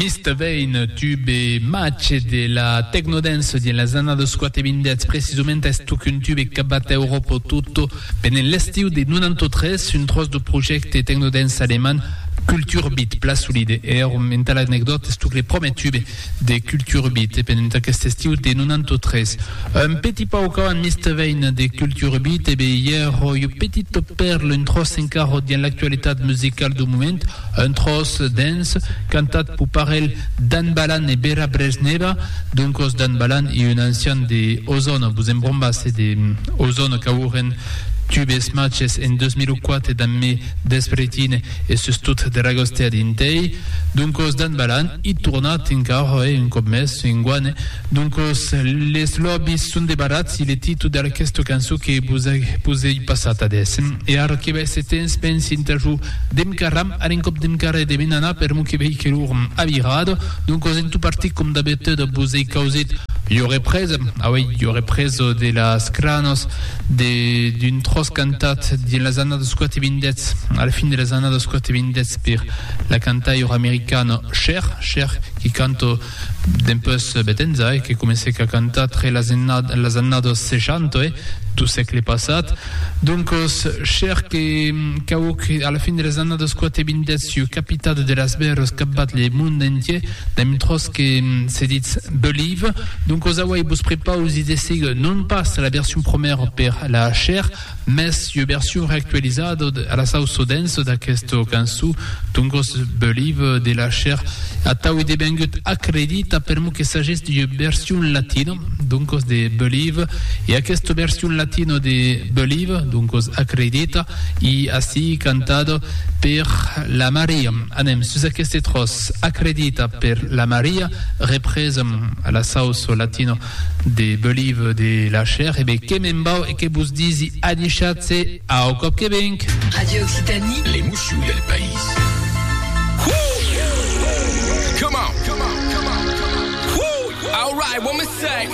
Mister Vein, tube màger de la tecnodance dins las annadas quat e vindètz, precisament es toc un tube qu'a bat Euròpa tota pendent l'estiu de 93, un tròç de projècte tecnodance alemand Kulturbeat, plan solide. E òrm, entà l'anecdòta, es toc le prumèr tube de Culturebit e pendent aqueste estiu de 93 un petit pauc avant Mister Vein de Culturebit e ben ièr Roio Petit Top Perle un tròç encarrot dins l'actualitat musicale du moment un tròç dance cantat pau parelh Dan Balan e Bera Brezneva doncos Dan Balan ei un ancian de Ozona vos en brombasse de Ozona qu'auren tu bes matches en 2004 e damb me Despretin e sustot de ragostea dintei, doncos d'an balan i torna tincar e un còp mès enguan doncos les lòbis son debarats i leti tot d'aquesta cançó que vos ei passat adés e ara que vai se tens pensi entà jo demcaram ara un còp demcar e demen anar per mon que vei que l'or a virat doncos en tot partir com d'abetut vos ei causit jo représ auei jo représ de las cranos d'un tròç cantat dins las annadas quatre vindèths, a la fin de las annadas quatre vindèths per la cantaira americana Cher, Cher qui canta dempuèi de temps a que comencèc a cantar tre las annadas 60 du sègle passat. Doncas Cher que qu'auc a la fin de las annadas quatre vindèths sieu capitada de las bèrras qu'abat le monde entier, Demintros que se ditz Believe, doncos auei vos prepausi de seguir non pas la version promèra per la hacher, mès ua version reactualizada a la sauço dance d'aquesta canço, doncos Believe de l'hacher atau e devengut acredita per mo que s'agís d'ua version latina, doncos de Believe, e aquesta version latina de Believe, doncos acredita, i ací cantada per la Maria. Anem sus aqueste tròç. s'acredita per la Maria, represa a la sauce latino de believe de la chair, e be que me'n vau e que vos disi adishatse au còp que venc. Radio Occitanie. Les moussus del país. Come on. Alright, what me say?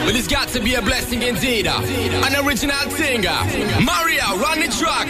Well, it's got to be a blessing indeed. An original thing. Maria, run the track.